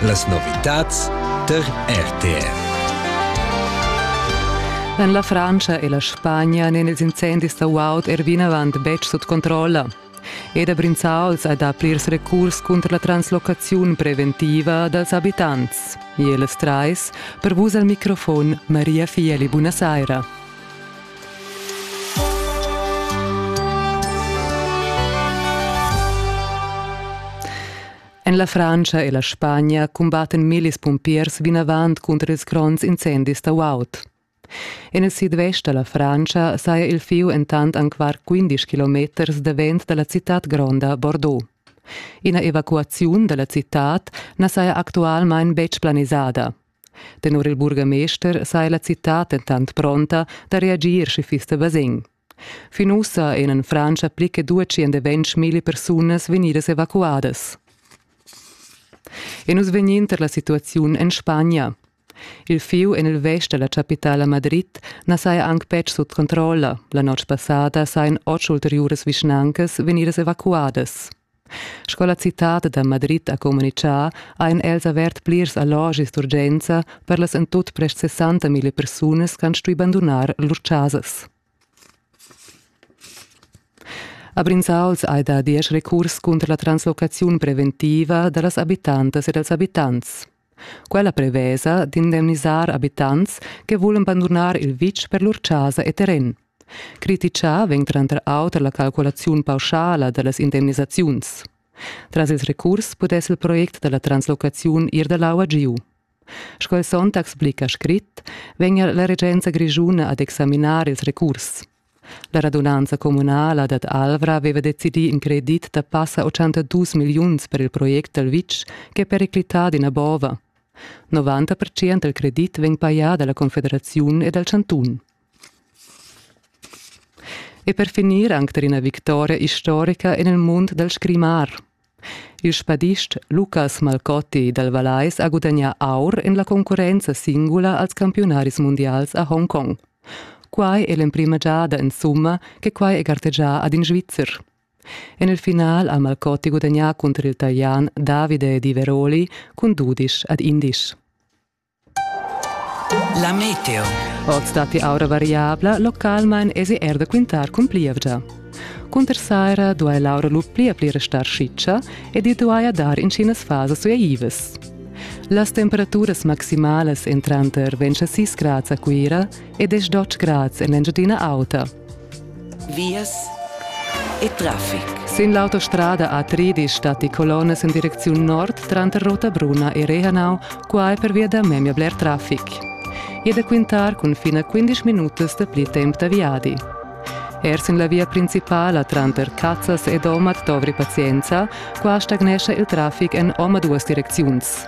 Las novitads tar RTR. En la Frantscha e la Spagna n'èn ils incendis da guaud er vinavant betg sut controlla. Ed a Brinzauls hai dà plirs recurs cunter la translocaziun preventiva dals abitants. E las trais per vus al microfon Maria Fieli. Buonasera. En la Frantscha e la Spagna cumbatten millis pumpiers vinavant cunter ils gronds incendis da Waut. En il sidvest da la Frantscha saja il fieu entant anc var 15 kilometers davent da la citad gronda Bordeaux. Ina evacuaziun da la citad na saja actualmain betg planisada. Tenor il burgamester saja la citad dentant pronta da reagir, sche fiss da basegn. Fin ussa èn en Frantscha pli che 220.000 persunas vegnidas evacuadas. E nus vegnin tar la situaziun en Spagna. Il fieu en il vest da la chapitala Madrid na saja anc betg sut controlla. La notg passada sajan otg ulteriuras vischnancas vegnidas evacuadas. Sco la citad da Madrid ha communitgà, ein els avert plirs allogis d'urgenza per las en tut prest 60.000 persunas che han stuì bandunar lur chasas. A Brinzauls hai dà diesch recurs cunter la translocaziun preventiva da las abitantas e dals abitants. Quella prevesa d'indemnisar abitants che vulan bandunar il vitg per lur chasa e terren. Criticà vegn tranter auter la calculaziun pauschala da las indemnisaziuns. Tras il recurs pudess il project da la translocaziun ir da l'aua giu. Sco il Sonntag explica scrit, vegnia la regenza grischuna ad examinar ils recurs. La radunanza communala dad Alvra aveva decidì in credit da passa 82 milliuns per il project dal vitg ch'è periclità d'ina bova. 90% del credit vegn pajà dalla Confederaziun e dal chantun. E per finir anche ina vittoria historica en il mund dal scrimar. Il spadist Lucas Malcotti dal Vallais ha gudagnà aur en la concurrenza singula als campiunaris mundials a Hongkong. Quai è l'emprima giada insumma che quai è gartegià ad in Svizzer. En il final ha Malcotti gudagnà cunter il Talian Davide Di Veroli cun dudisch ad indisch. La meteo. Oz datti aura variabla, localmain esi er da quintar cun plievgia. Cunter saira duai l'aura lu pli pli restar schitscha ed i duaja dar intginas fasas uaivas. Las temperaturas maximalas entran tar 26 grads a Cuira e 10 grads en l'Engiadina Auta. Vias e traffic. Sin l'autostrada A3 statti colonnas en direcziun nord tranter Rotabruna e Rehanau, quai pervia da memia bler traffic. E da quintar cun fin a 15 minutas da pli temp da viadi. Er sin la via principala tranter Cazzas ed Omad dovri pazienza, qua stagnescha il traffic en omaduas direcziuns.